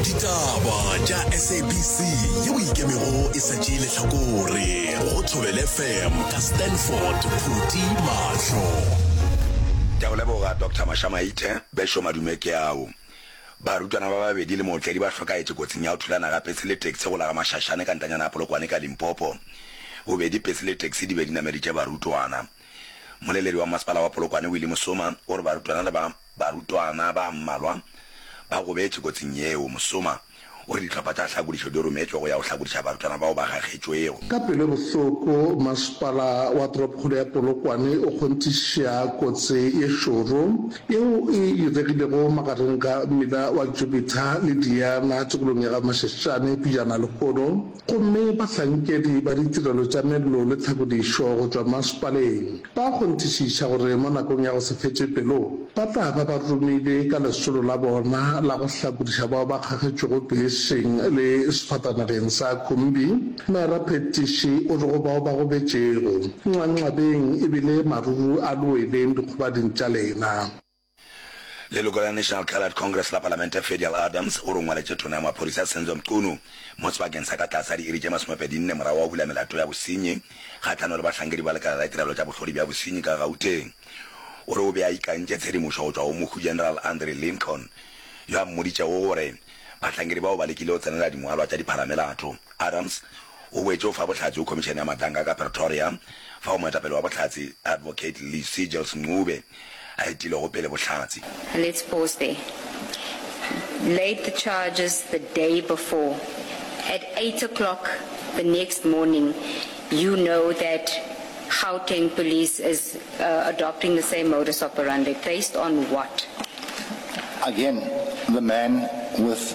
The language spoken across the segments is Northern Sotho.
ditaba tša sabc yeo ikemego e sa tšee letlhakore go thobel fm ka stanford phuti mahlo ke go leboga dr mashamaithe besho madume ke ao barutwana ba babedi le mootledi ba hlokaetše kotsing ya go thulana ga pese le taxi go la ga mašašane ka ntanyana ya polokwane ka limpopo bobedi pese le taxi di be di nameditše barutwana moleledi wa masepala wa polokwane willy mosoma o re barutwana le ba Barutwana ba mmalwa ba gobetše kotsing yeo. Mosoma o re dihlopha tša tlhakodišo di rometšwe go ya go hlakodiša barutwana bao ba gagetšwego. Ka pelo e bohloko, masepala wa toropokgolo ya Polokwane o kgonthiša kotsi ye šoro yeo e diregilego magareng ga mmila wa Jupiter le Diana tikolong ya ga Mashashane pejana lehono. Gomme bahlankedi ba ditirelo tša mello le tlhakodišo go tšwa masepaleng ba a kgonthišiša gore mo nakong ya go se fetše pelo ba tla ba ba romile ka lesolo la bona la go hlakodiša bao ba kgagetšwego beseng le sefatanageng sa khumbi. Mera Phettishi o re go bao ba gobetšego, Nxanxabeng ebile maruru a lweleng dikgobading tša lena. Leloko la National Coloured Congress la Palamente Fedial Adams o rongwaletše Tona ya Maphodisa Senzo Mchunu mo sebakeng sa ka tlase ga diiri tše masomepedi nne morago wa go bula melato ya bosenyi kgahlano le bahlankedi ba lekala la ditirelo tša bohlodi bja bosenyi ka Gauteng. O re o be a ikantše tshedimošo go tšwa go Mohu General Andre Lincoln yo a mmoditšego gore bahlankedi bao ba lekile go tsenela dingwalwa tša dipharamelato. Adams O boetše o fa bohlatse go Khomišene ya Matanka ka Pretoria, fao moetapele wa bohlatse, Advocate Lee Seegels Ncube, a etilego pele bohlatse. Let's pause there. Laid the charges the day before, at eight o'clock the next morning you know that Gauteng Police is adopting the same modus operandi, based on what? Again the man with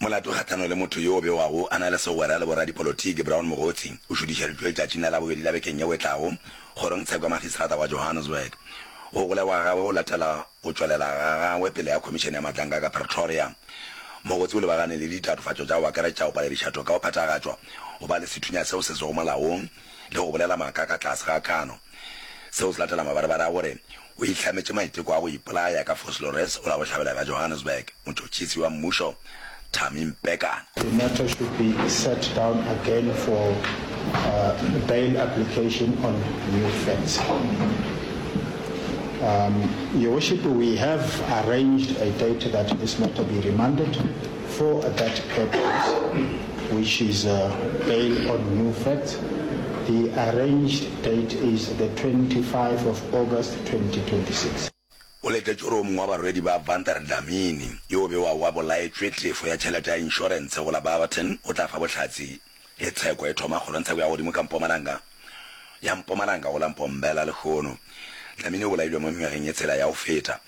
Molato kgahlano le motho yo o bewago a na le segwera le boradipolotiki Brown Mogotsi o šudišeditšwe letšatšing la Labobedi la bekeng yeo e tlago kgorongtsheko ya makgistrata wa Johannesburg. Go golegwa ga gagwe go latela go tšwelela ga gagwe pele ga khomišene ya matlanka ka Pretoria. Mogotsi o lebagane le ditatofatšo tša go akaretša go paledišatho ka go phethagatšwa, go ba le sethunya seo se sego molaong, le go bolela maaka ka tlase ga kano. Seo se latela mabarebare a gore o ihlametše maiteko a go ipolaya ka Vosloorus o la go hlabela ka Johannesburg, motšhotšhisi wa mmušo Thami Mpekana. The matter should be sat down again for bail application on new facts. Your worship, we have arranged a date that this matter be remanded. For that purpose, which is bail on new facts, the arranged date is the 25 of August 2026. O letetšwe gore o mongwe wa barwedi ba Avantar Dlamini, yo o bewago a bolaetšwe tlefo ya tšhelete ya inšorentshe go la Barberton, o tla fa bohlatse. Ge tsheko e thoma kgolong, tsheko ya godimo ka mpomalanga, ya mpomalanga go la Mpombela lehono, Dlamini o bolailwe mo nywageng e tshela ya go feta.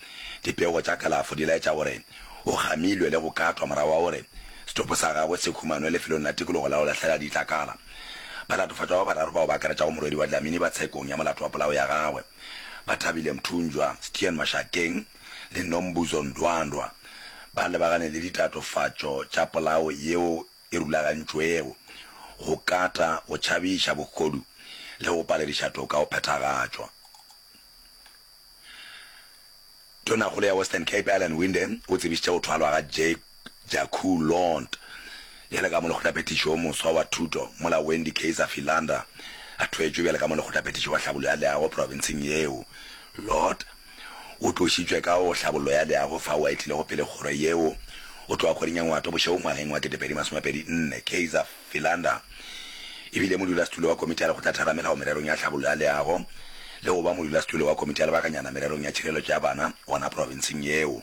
Dipego tša kalafo di laetša gore o gamilwe le go katwa morago ga gore setopo sa gagwe se humanwe lefelong la tikologo la go lahlela ditlakala. Balatofatšwa ba bararo bao ba akaretšago morwedi wa Dlamini ba tshekong ya molato wa polao ya gagwe, Bathabile Mthunjwa, Stian Mashakeng le Nombuzo Ndwandwa, ba lebagane le ditatofatšo tša polao yeo e rulagantšwego go kata, go tšhabiša, bogodu le go palediša toka go phethagatšwa. Tonakgolo ya Western Cape Alan Winde o tsebišitše go thwalwa ga Jake Jaku Lont bjale ka molekgothaphethiši yo moswa wa thuto mola Wendy Kayser Philander a thwetšwe bjale ka molekgothaphethiši wa tlhabollo ya leago profenseng yeo. Lott O tlošitšwe ka go hlabollo ya leago fao a etilego pele kgoro yeo. O tloga kgoring ya Ngwato bošegong ngwageng wa 2024. Kaizer Philander e bile modulasetulo wa Komiti ya Lekgotla Theramelao mererong ya tlhabollo ya leago le go ba modulasetulo wa Komiti ya Lebakanyana mererong ya tšhireletšo ya bana gona profenseng yeo.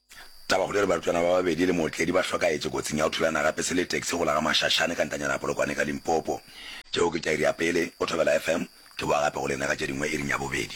Tabakgolo e re barutwana ba babedi le mootledi ba hlokaetše kotsing ya go thulana gape se le taxi go la ga Mashashane ka ntanyana ya Polokwane ka Limpopo. Tšeo ke tairi ya pele, o thobela FM. Ke boa gape go lena ka tše dingwe iring ya bobedi.